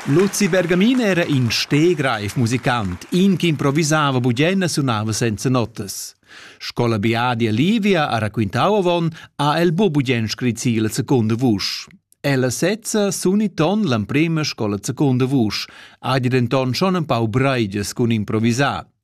Luzi Bergamin era in stegreif musicant, in che improvisava bugen e sunava senza notas. Scola biadi a Livia ha raquintau avon, ha el bu bugen scrit si la secunda vusch. Ella sezza suni ton l'emprema scola secunda vusch, ha denton schon empau breiges cun improvisar.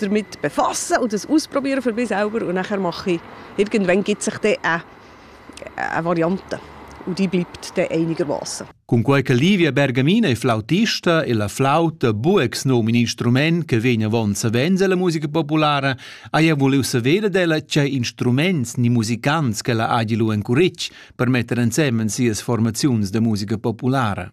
damit befassen und das ausprobieren für mich selber und nachher mache ich, irgendwann gibt sich dann eine, eine Variante und die bleibt dann einigermaßen. Cunquei che Livia Bergamina è flautista e la flauta bu ex num in instrument che vegn avon savens alla musica populara, haja vuliu saver d'ella che instruments ni musicants che la hagi lu encuric per metter ensemen sias formaziuns de musica populara.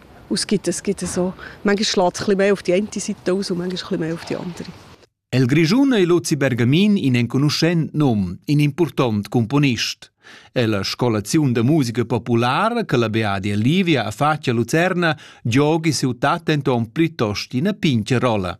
Und es gibt, es gibt so, manchmal schlägt es ein mehr auf die eine Seite aus und manchmal ein mehr auf die andere. El Grischun è Luzi Bergamin in enconuschent nom, in important componist. È la scolazione de musica popolare che la Beadia Livia ha fatto a Lucerna giochi su tatenton plitost in a pince rola.